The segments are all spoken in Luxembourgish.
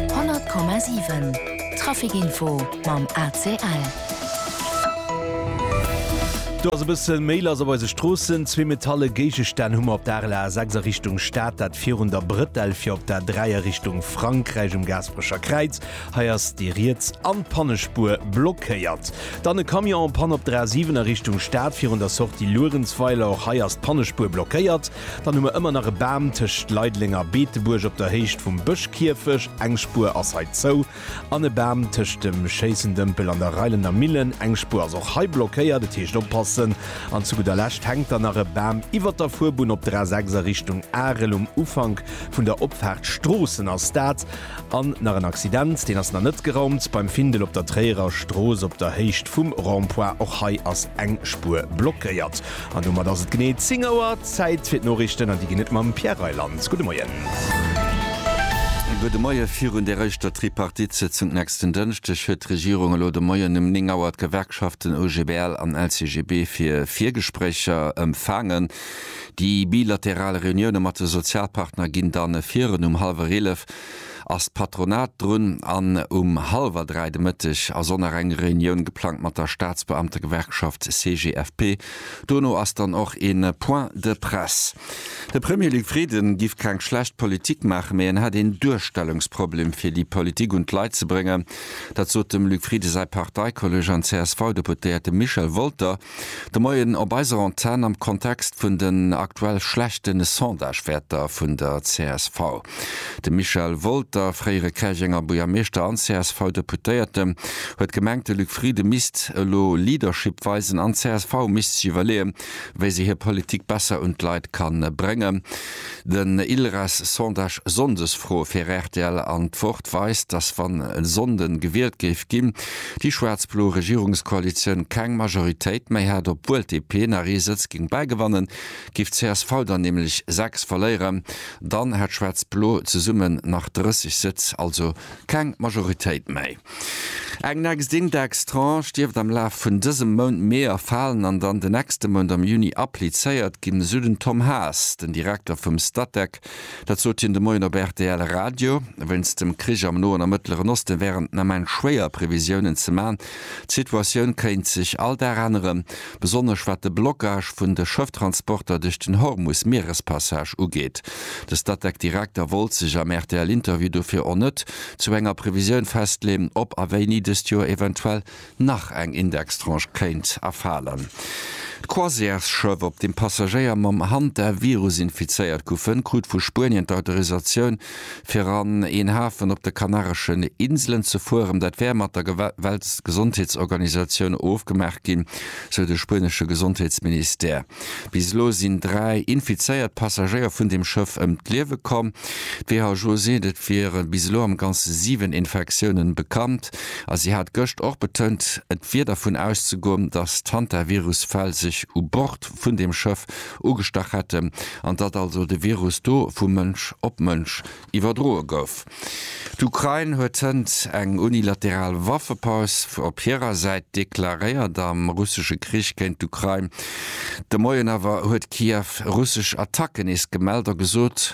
100,7 Traficinfo mam ACL. Do ass e bësse méi lass op eise Stroossen. Zwee metalle Géigestänn hu mer op der Arel A6 a Richtung Stad, dat virun der Brëtell, fir op der 3 a Richtung Frankräich um Gaasperecher Kräiz. Hei ass déi riets an d'Pannespuer blockéiert. Dann e Camion en Panne op der A7 a Richtung Stad, virun der Sortie Luerenzweiler. Och hei ass d'Pannespuer blockéiert. Dann hu mer ëmmer nach e Bam tëscht Leideleng a Beetebuerg op der Héicht vum Bëschkierfech, eng Spuer ass hei zou, an e Bam tëscht dem Schéissendëmpel an der Reilender Millen, eng Spuer ass och hei blockéiert, et heescht oppassen. An zu gudder Lescht hänkt dann nach e Bam iwwert der Fuerbunn op der A6 a Richtung Arel um Ufank vun der Opfaart Stroossen. Ass dat An nach en Accident, deen ass nach net geraumt, beim Findel op der Tréierer Strooss op der Héicht vum Rond-point. Och hei ass eng Spuer blockéiert. An domat ass et genee 10 Auer. Zäit fir d'Noriichten an déi ginn et mam Pierre Reyland. Gudde Moien. Gudde Moie. Virun där éischter Tripartite-Sëtzung nächsten Dënschdeg huet d'Regierung elo de Moien um 9 Auer d'Gewerkschaften OGBL an LCGB fir Virgespréicher empfaangen. Déi bilateral Reunioune mat de Sozialpartner ginn dann virun. Um hallwer eelef ass d'Patronat drun an um hallwer dräi de Mëtteg ass och nach eng Reunioun geplangt mat der Staatsbeamtegewerkschaft CGFP. Dono ass dann och e Point de presse. De Premier Luc Frieden giff keng schlecht Politik maachen, mee en hätt een Duerstellungsproblem fir déi Politik un d'Leit ze bréngen. Dat sot dem Luc Frieden säi Parteikolleg an CSV-Deputéierte Michel Wolter. De Moien op eiser Antenn am Kontext vun den aktuell schlechte Sondagewäerter vun der csv. De Michel Wolter, fréiere Käerjenger Buergermeeschter an CSV-Deputéierte, huet gemengt, de Luc Frieden misst elo Leadership weisen an csv misst sech iwwerleeë wéi se hir Politik besser un d'Leit ka bréngen. Den ILRES-Sondage Sonndesfro fir rtl an d'Woch. Fakt weist, datt wann e Sonnden gewielt géif ginn, déi schwaarz-blo Regierungskoalitioun keng Majoritéit méi hätt. Obwuel d'DP nach ee Sëtz géing bäigewannen, géif d'CSV der nämlech 6 verléieren. Dann hätt schwaarz-blo zesummen nach 30 Sëtz, also keng Majoritéit méi. Eng next Indextranche dierft am Laf vun dësem Mount Mee erfalen an dann de nächste Mount am Juni applizéiert ginn, esou den Tom Haas, den Direkter vum Statec. Dänemark. Dat sot hien de Moien op rtl Radio. Wéinst dem Krich am Noen a Mëttleren Osten wär et den Ament schwéier, Previsiounen ze man. D'Situatioun kéint sech all Dag änneren, besonnesch wat de Blockage vun de Schëfftransporter duerch den Hormus-Mierespassage ugeet. De Statec-Direkter wollt sech am RTL-Interview dofir och net zu enger Previsioun festleeën, ob a wéini dëst Joer eventuell nach eng Indextranche kéint erfalen. D'Croisièresschëff, op deem Passagéier mam Hantavirus infizéiert goufen, krut vu Spuenien d'Autorisatioun, fir an een Hafen op de Kanareschen Inselen ze fueren. Dat wär mat der Weltgesondheetsorganisatioun ofgemaach ginn, sou de spuenesche Gesondheetsministère. Bis elo sinn dräi infizéiert Passagéier vun deem Schëff ëm d'Liewe komm. D'WHO seet, et wiere bis elo am Ganze siwen Infektiounen bekannt. A si hat gëscht och betount, et wier dervun auszegoen, datt d'Hantavirus-Fäll sech u Bord vun deem Schëff ugestach hätten an datt also de Virus do vu Mënsch op Mënsch iwwerdroe gouf. D'Ukrain huet hënt eng unilateral Waffepaus op hirer Säit deklaréiert am russesche Krich géint d'Ukrain. De Moien awer huet Kiew russesch Attacken nees gemellt a gesot,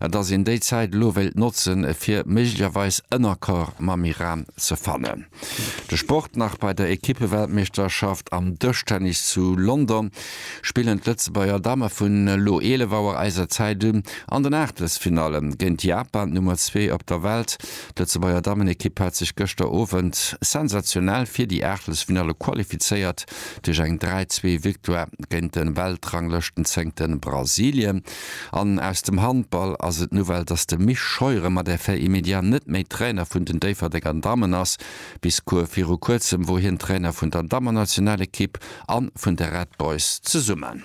a datt een déi Zäit elo wéilt notzen, fir méiglecherweis en Accord mam Iran ze fannen. De Sport nach, Bei der Ekippeweltmeeschterschaft am Dëschtennis zu London spillen d'Lëtzebuerger Damme vun elo 11 Auer eiser Zäit un an den Aachtelsfinalle géint Japan, d'Nummer zwee op der Welt. D'Lëtzebuerger Dammenekipp hat sech gëschter Owend sensationell fir déi Aachtelsfinalle qualifizéiert duerch eng 3-2 Victoire géint de Weltranglëschtenzéngte Brasilien. An aus dem Handball ass et d'Nouvelle, dass de Misch Scheuren mat Effet immédiat net méi Trainer vun den Déifferdenger Dammen ass. Bis viru kuerzem wor hien Trainer vun der Dammennationalekipp a vun de Red Boys zesummen.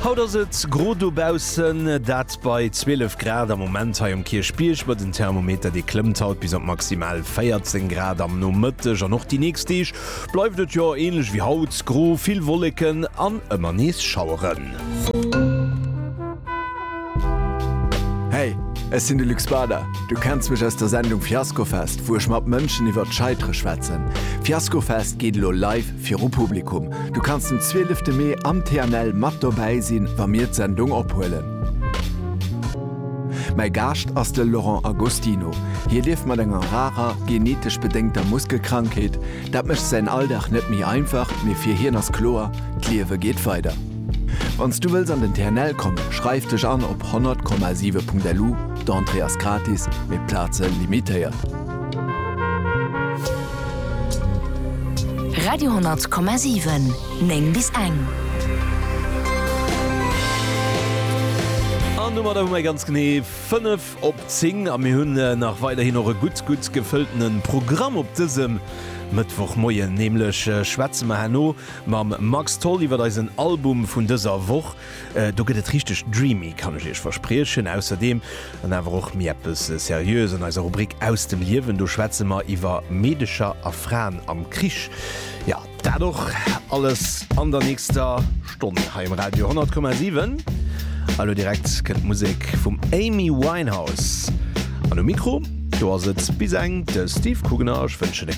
Haut ass et gro dobaussen, dat bei 12 Grad am Moment hei um Kierchbierg, ma den Thermometer dee klëmmt haut bis op maximal 14 Grad am Nomëtteg an och déi nächst Deeg. Bleift et jo ähnlech wéi haut, gro, vill Wolleken an ëmmer nees Schaueren. Hey, ech sinn de Luc Bader. Du kenns mech aus der Sendung Fiaskofest, wou ech mat Mënschen iwwert d'Scheitere schwätzen. Fiaskofest geet elo live viru Publikum. Du kanns den 12 Mee am TNL mat dobäi sinn, wa mir d'Sendung ophuelen. Mäi Gaascht ass de Laurent Agostino. Hie lieft mat enger rarer, genetesch bedéngter Muskelkrankheet. Dat mécht säin Alldag net méi einfach, mee fir hien ass kloer, D'Liewe geet weider. Wann s du wëlls an den TNL kommen, schreif dech an op 100,7.lu, d'Entrée ass gratis, mee d'Plaze limitéiert. Radio 100,7. 9 bis eng. An domadder hu mär ganz genee 5 op 10 a mir hunn nach weiderhin och e gutt, gutt gefëlltene Programm op dësem Mëttwochmoien. Nämlech schwätze mer herno mam Max Tholl iwwert eisen Album vun dëser Woch. Do gëtt et richteg dreamy, kann ech Iech verspriechen. Ausserdeem dann awer och méi eppes Seriöes an eiser Rubrik Aus dem Liewen. Do schwätze mer iwwer Meedercher a Fraen am Krich. Jo. Dat och alles an der nächster Stonn hei um Radio 10,7. A lo direkt kënnt d'Musek vum Amy Winehouse an um Mikro, do ass et bis eng de Steve Kugener. Ech wënschen e.